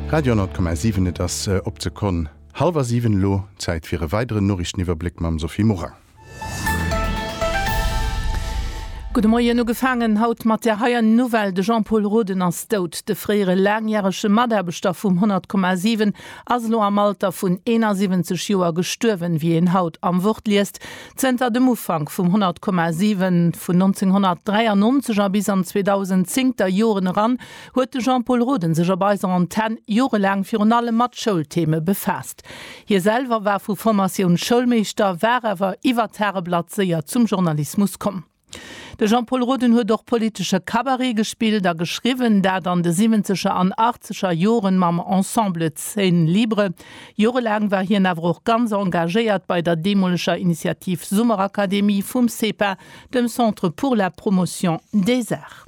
Radio 10,7, Et ass op d'Sekonn hallwer siwen. Elo Zäit fir e weideren Noriichteniwwerbléck mam Sophie Morang. Gudde Moien. Ugefaangen haut mat där hei Nouvelle, De Jean-Pol Roden ass dout. De fréiere laangjärege Mataarbechter vum 100,7 ass elo am Alter vun 71 Joer gestuerwen. Wéi een haut am Wort liest, Zënter dem Ufank vum 100,7 vun 1993 a bis an d'zweedausend-zéngter Joren eran huet de Jean-Pol Roden sech op eiser Antenn jorelaang virun allem mat Schoultheme befaasst. Hie selwer war vu Formatioun Schoulmeeschter, war awer iwwert d'Hareblatt séier zum Journalismus komm. De Jean-Pol Roden huet och politesche Cabaret gespillt a geschriwwen, dat an de siwwenzeger an achtzeger Joren mam Ensemble Scène Libre. Jorelaang war hien awer och ganz engagéiert bei der deemoleger Initiativ Summerakademie vum CEPA, dem Centre pour la Promotion des Arts.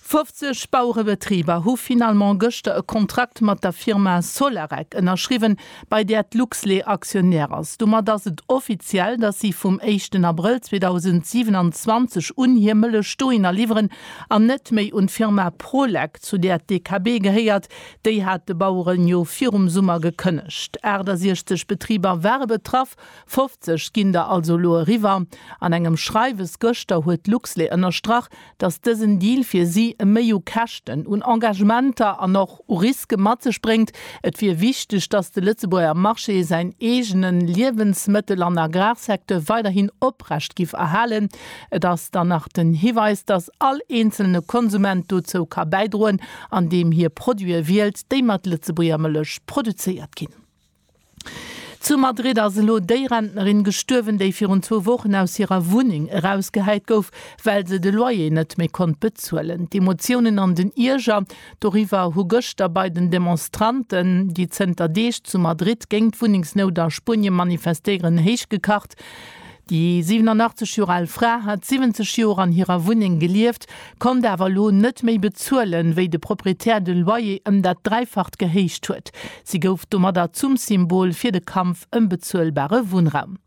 50 Bauerebetriber hu finalement gëschter e Kontrakt mat der Firma Solarec ënnerschriwwen, bei där d'Luxlait Aktionär ass. Domat ass et offiziell, datt si vum éischten Abrëll 2027 un hir Mëllech dohinner liwweren an net méi un d'Firma Prolec, zu där d'DKB gehéiert. Déi hat de Baueren jo virum Summer gekënnegt. 68 Betriber ware betraff, 50 ginn der also elo eriwwer. An engem Schreiwes gëschter huet d'Luxlait ënnerstrach, datt dësen Deal fir si méi u Käschten, un Engagementer an och u Riske mat sech bréngt. Et wier wichteg, datt de Lëtzebuerger Marché säin eegene Liewensmëttel an Agrarsecteur weiderhin oprecht giff erhalen. Et ass dann nach den Hiweis, datt all eenzelne Konsument dozou ka bäidroen, andeem hie Produite wielt, déi mat Lëtzebuerger Mëllech produzéiert ginn. Zu Madrid ass elo déi Rentnerin gestuerwen, déi virun zwou Wochen aus hirer Wunneng erausgehäit gouf, well se de Loyer net méi konnt bezuelen. D'Emotiounen an den Ierger doriwwer hu gëschter bei den Demonstranten, déi zënter Deeg zu Madrid géingt d'Wunnengsnout a Spuenie manifestéieren, héichgekacht. Déi 87 Joer al Fra hat 70 Joer an hirer Wunneng gelieft, konnt awer elo net méi bezuelen, wéi de Proprietär de Loyer ëm dat Dräifacht gehéicht huet. Si gouf domadder zum Symbol fir de Kampf ëm bezuelbare Wunnraum.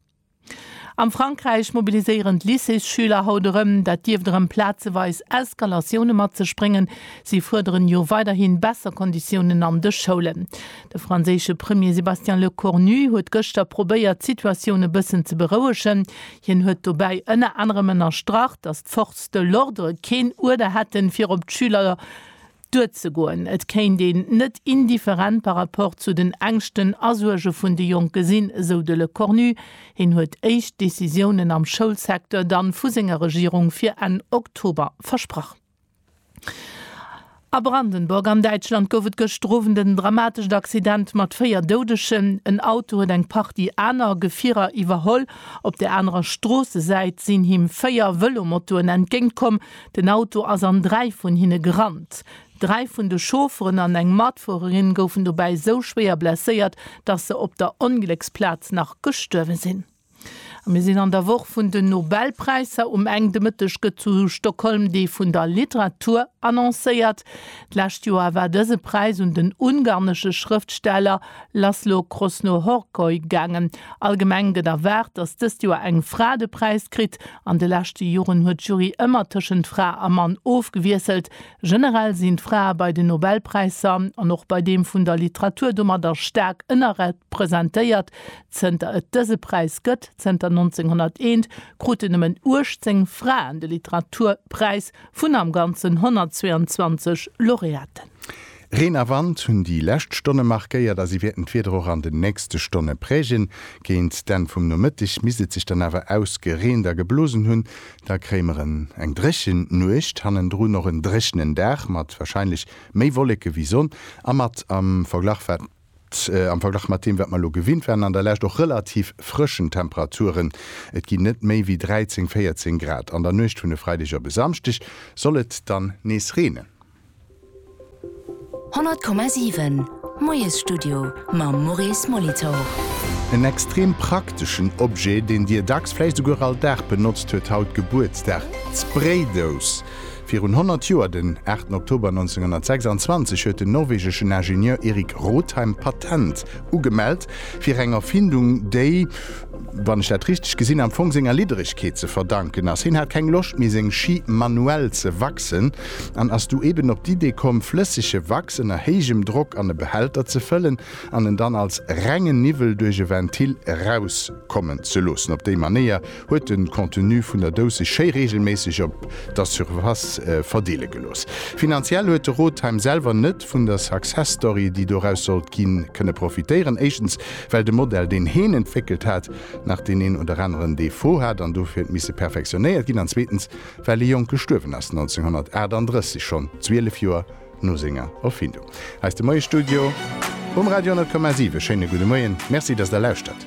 Am Frankräich mobiliséieren d'Lycéesschüler haut erëm. Dat dierft erëm plazeweis Eskalatioune mat sech bréngen. Si fuerderen jo weiderhi besser Konditiounen an de Schoulen. De franséische Premier Sébastien Lecornu huet gëschter probéiert d'Situatioun e bëssen ze berouegen. Hien huet dobäi ënner anerem ënnerstrach, datt d'Forces de l'ordre keen Uerder hätten, fir op d'Schüler duerzegoen. Et kéint een net indifferent par rapport zu den Ängschten a Suerge vun de Jonke sinn, esou de Lecornu. Hien huet éischt Decisiounen am Schoulsecteur dann vu senger Regierung fir Enn Oktober versprach. A Brandenburg an Däitschland gouf et gëschter Owend en dramatescht Accident mat 4 Doudegen. En Auto huet eng Partie aner Gefierer iwwerholl. Op der anerer Stroossesäit sinn him 4 Vëlomotoen entgéint komm. Den Auto ass an 3 vun hinne gerannt. 3 vun de Chaufferen an eng Matfuererin goufen dobäi esou schwéier blesséiert, dass se op der Onglécksplaz nach gestuerwe sinn. A mir sinn an der Woch vun den Nobelpräisser. Um Enn de Mëtteg gëtt zu Stockholm dee vun der Literatur annoncéiert. D'lescht Joer war dëse Präis un den ungarnesche Schrëftsteller Laszlo Krosno-Horkoy gaangen. Allgemeng gëtt erwaart, datt dëst Joer eng Fra de Präis kritt. An de leschte Joren huet d'Jury ëmmer tëschent Fra a Mann ofgewiesselt. Generell sinn d'Frae bei den Nobelpräisser an och bei deem vun der Literatur domadder staark ënnerrepresentéiert. Zënter et dëse Präis gëtt, zënter 1901, kruten nëmmen 18 Fraen de Literaturpräis vun am Ganzen 122 Laureaten. Reen a Wand hunn déi lescht Stonne markéiert a si wäerten d'Wieder och an den nächste Stonne prägen. Géint d'Enn vum Nomëtteg misst et sech dann awer ausgereent a geblosen hunn. Da kréie mer en eng dréchen Nuecht, hannendrun och en dréchenen Dag mat warscheinlech méi Wolleke wéi Sonn a mat am Verglach wat. Haut, am Verglach mat deem wat mer elo gewinnt waren an der Lescht, och relativ frëschen Temperaturen. Et ginn net méi wéi 13, 14 Grad. An der Nuecht vun e Freideg op e Samschdeg soll et dann nees reenen. 100,7 Moiesstudio mam Maurice Molitor. En extrem prakteschen Objet, deen Dir dacks, vläicht esouguer all Dag benotzt, huet haut Gebuertsdag, d'Spraydous. Virun 100 Joer, den 8 Oktober 1926, huet den norwegeschen Ingenieur Erik Rotheim d'Patent ugemellt fir eng Erfindung, déi, wann ech dat richteg gesinn hunn, am Fong senger Lidderegkeet ze verdanken ass. Hien hat keng Loscht méi, seng Schi manuell ze wachsen an ass du eben op d'Idee komm, flëssege Wachs ënner héijem Drock an e Behälter ze fëllen an en dann als rengen Niwwel duerch e Ventil erauskommen ze loossen. Op déi Manéier Huet den Contenu vun der Douce schéi regelméisseg op der Surface verdeelen gelooss. Finanziell huet de Rotheim selwer net vun der Success Story déi doraus sollt ginn kënne profitéieren. Éischtens well de Modell deen heen entwéckelt hat nach deen een oder aneren Defaut hat an dofir huet misse perfektionéiert ginn an zweetens well e Jonk gestuerwen ass 1938, schonn 12 Joer no senger Erfindung. Eis de Moie Studio um Radio 10,7 e schéine gudde Moien. Merci dass der lauschtert.